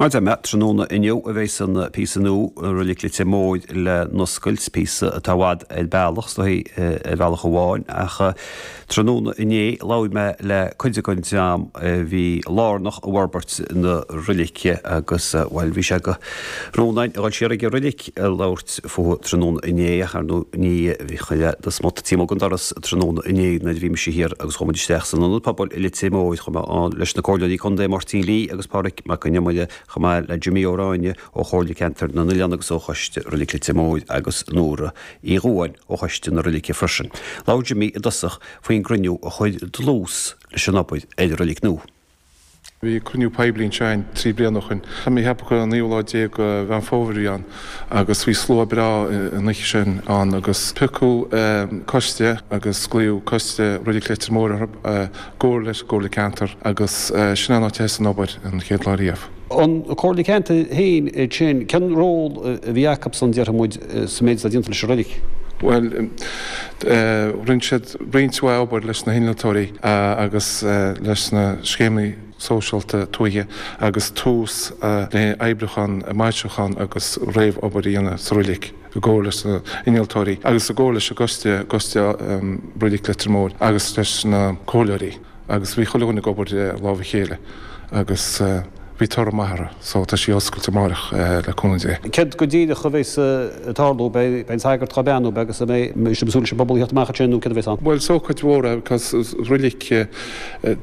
Mar a dúirt mé, tráthnóna inniu a bheas an píosa nua de Reilig Leitir Móir le n-oscailt, píosa atá i bhfad ar bealach, is dóigh, ar bhealach amháin, ach tráthnóna inné labhair mé le cuid den dream a bhí lárnach i bhforbairt na reilige agus, bhuel, bhí sé de rún againn a dhul siar ag an reilig. ag labhairt fúithi tráthnóna inné ach ar ndóigh ní chuirfeá do smut taobh amuigh den doras tráthnóna inné nuair a bhí mise thiar agus chuaigh muid isteach san Ionad Pobail i Leitir Móir chomh maith ann leis na Comhairleoirí Contae Máirtín Lee agus Pádraig Mac an Iomaire chomh maith le Jimí Ó Ráinne ó Chomhairle Ceantair na nOileán agus ó Choiste Reilig Leitir Móir agus Nóra Uí Dhugáin ó Choiste na Reilige freisin. Labhair Jimí i dtosach faoin gcruinniú a chuir dlús leis an obair ar an reilig nua. Bhí cruinniú poiblí anseo againn trí bliana ó shoin, tá mé ag ceapadh an naoú lá déag de Mheán Fómhair a bhí ann, agus bhí slua breá an oíche sin ann agus piocadh coiste agus glaodh Coiste Reilig Leitir Móir orthu i gcomhar leis an gComhairle Ceantair agus sin an áit a thosaigh an obair an chéad lá riamh. an Comhairle Ceantair féin iad sin. Cén ról a bhí acabsan, déarfaimid, sa méid atá déanta leis an reilig? Bhuel, rinne siad roinnt mhaith obair leis na hinnealtóirí agus leis na scéimeanna sóisialta tuaithe agus Tús le oibriúchán, maisiúchán agus réamh-obair a dhéanamh sa reilig i gcomhar leis na hinnealtóirí agus i gcomhar leis an gcoiste, Coiste Reilig Leitir Móir agus leis na comhairleoirí. Agus bhí chuile dhuine ag obair as lámha a chéile agus bhí toradh maith uirthi so tá sí oscailte amáireach le cúnamh Dé. Céard go díreach a bheas ag tarlú? Beidh an sagart ag beannú agus an mbeidh sibh ag súil leis an bpobal a theacht amach ansin nó céard a bheas ann? Bhuel is ócáid mhór é because reilig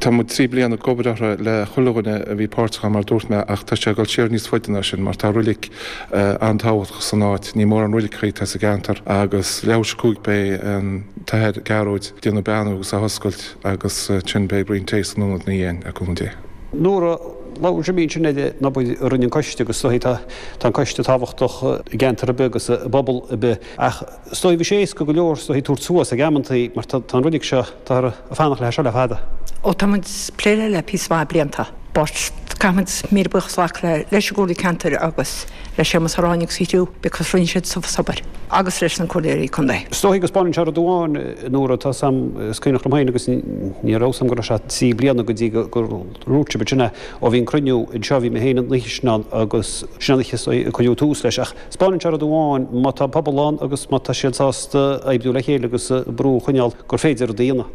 tá muid trí bliana ag obair uirthi le chuile dhuine a bhí páirteach ann mar a dúirt mé ach tá sé ag dul siar níos faide ná sin mar tá reilig an-tábhachtach san áit, ní mórán reiligeachaí atá sa gceantar agus leathuair tar éis a cúig beidh an tAthair Gearóid ag déanamh beannú agus á hoscailt. Agus ansin beidh braon tae san Ionad ina dhiaidh le cúnamh Dé. Nóra, labhair Jimí ansin ar an obair a rinne an coiste agus is dóigh tá an coiste tábhachtach i gceantar ar bith agus i bpobal ar bith ach is dóigh bhí sé éasca go leor is dóigh tabhairt suas ag amanntaí mar tá an reilig seo táthar ag fanacht léi seo le fada. Ó tá muid ag plé léi le píosa maith blianta but caithfimid míle buíochas a ghlacadh leis an gComhairle Ceantair agus. le Séamus Ó Ráinne agus a chriú because rinne siad an t-uafás obair agus leis na Comhairleoirí Contae. Is dóichí go spáineann sé rud amháin, Nóra, tá a fhios agam, is cuimhneach liom féin agus ní raibh a fhios agam go raibh sé trí bliana go dtí gur dhúirt sibh ansin é, ó bhí an cruinniú anseo bhí mé féin an oíche sin ann agus sin an oíche a cuireadh tús leis ach spáineann sé rud amháin, má tá an pobal ann agus má tá siad sásta oibriú le chéile agus brú a choinneáil gur féidir rud a dhéanamh.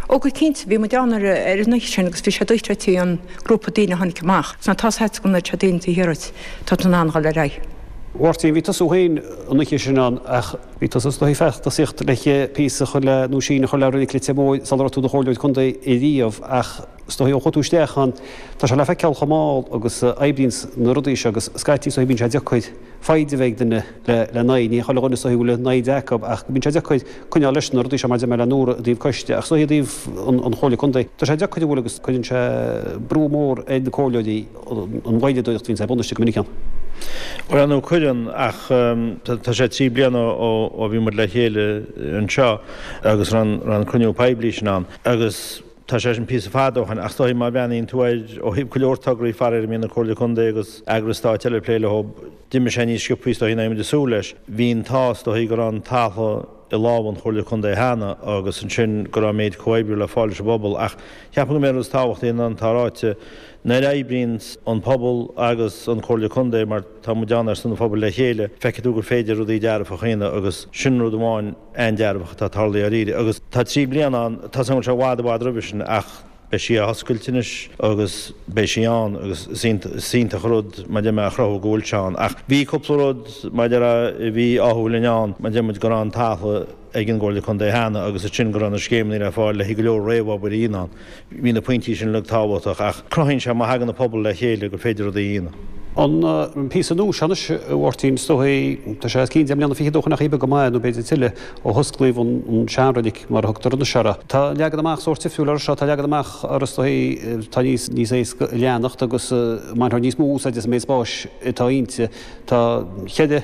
Ó go cinnte, bhí muid ann ar an oíche sin agus bhí sé dochreidte an grúpa daoine a tháinig amach, tá a fhios agam sásta go ndeir sé daoine taobh thiar uait. Tá tú in ann dhul ar aghaidh. A Mháirtín, bhí tusa fhéin an oíche sin ann ach bhí tusa is dóigh i bhfad ag iarraidh píosa a chur le nó síneadh a chur le reilig Leitir Móir sular raibh tú i do chomhairleoir contae i riamh ach is dóigh ó chuaigh tú isteach ann tá sé le feiceáil chomh mall agus a oibríonns na rudaí seo agus scaití go bíonn sé deacair foighde a bheith ag duine lena n-aghaidh. níl ag duine is dóigh foighde lena n-aghaidh ach go mbíonn sé deacair coinneáil leis na rudaí seo mar deir mé le Nóra i dtaobh coiste ach is dóigh i dtaobh an Chomhairle Contae tá sé deacair a bhfuil a fhios cuireann sé brú mór ar na comhairleoirí an mhoilleadóireacht a bhíonns ar bun istigh go minic ann. Bhuel ar ndóigh cuireann ach tá sé trí bliana ó bhí muid le chéile anseo agus an cruinniú poiblí sin ann agus Tá sé sin píosa fada ó shoin, ach is dóigh má bhreathnaíonn tú air ó thaobh go leor tograí faraoir a mbíonn na Comhairle Contae agus eagrais stáit eile ag plé leo, d'imigh sé níos sciopthaí is dóigh ná a mbímid ag súil leis. Bhí an t-ádh is dóigh go raibh an talamh i lámha an Chomhairle Contae cheana agus ansin go raibh an méid comhoibriú le fáil leis an bpobal. Ach ceapaim gurb é an rud is tábhachtaí ná mar atá ráite, nuair a oibríonns an pobal agus an Comhairle Contae mar Tá muid ann ar son an phobail le chéile. Feicfidh tú gur féidir rudaí dearfacha a dhéanamh agus sin rud amháin an-dearfach atá tarlaithe dáiríre. Agus tá trí bliana ann, tá sé ar na bacáin seo i bhfad i bhfad roimhe sin ach beidh sí á hoscailt anois agus beidh sí ann agus is iontach rud mar deir mé a chruthú go bhfuil sé ann. Ach bhí cúpla rud mar deir a bhí ádhúil linn ann mar deir muid go raibh an talamh ag an gComhairle Contae cheana agus ansin go raibh na scéimeanna le fáil le haghaidh go leor réamhobair a dhéanamh ann. Bhí na pointí sin uilig tábhachtach ach cruthaíonn sé má thagann an pobal le chéile gur féidir rudaí a dhéanamh. An píosa nua seo anois, a Mháirtín, is dóigh, tá sé os cionn deich mbliana fichead ó shin chuile bheag go maith nó b'fhéidir tuilleadh, ó hosclaíodh an seanreilig mar a thugtar anois air. Tá leagan amach sórt difriúil air seo, tá leagan amach air is dóigh atá níos níos éasca a leanacht agus a mbainfear níos mó úsáide as an méid spáis atá inti. Tá cheithre.